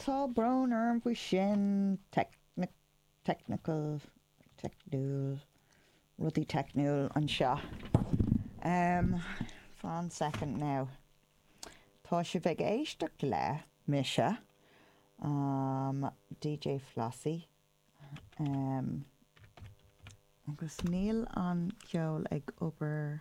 Tá brón orm faoi sin. technical, teicniúil, rudaí teicniúil anseo. fan soicind now. Tá sibh ag éisteacht le mise, DJ Flossie, agus níl an ceol ag obair.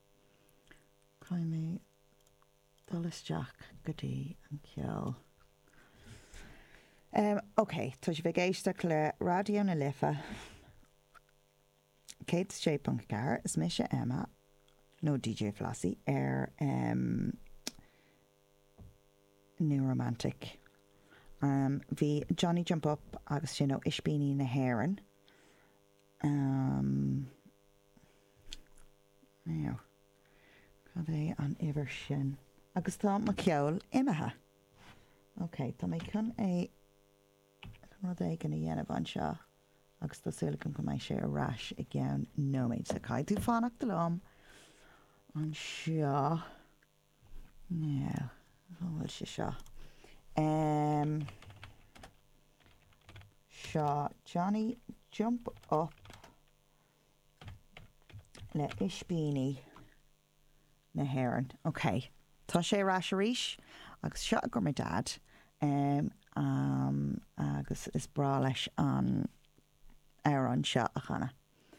Caithfidh mé dul isteach go dtí an ceol. Em, okay, tá sibh ag éisteacht le Raidió na Life 106.4, is mise Emma, nó DJ Flossie, ar, em, Nua-Rómánsach. Em, bhí Johnny Jump Up agus sin ó Ispíní na hÉireann, Cad é an uimhir sin? Agus tá mo cheol imithe. Ok, tá mé chun é, chun rud éigin a dhéanamh anseo agus tá súil agam go mbeidh sé ar ais i gceann nóiméid. So caithfidh tú fanacht liom anseo. An bhfuil sé seo? Seo Johnny Jump Up le Ispíní na hÉireann. Ok, tá sé ar ais arís agus seo i gcomhair mo Dad agus is breá leis an amhrán seo a chanadh.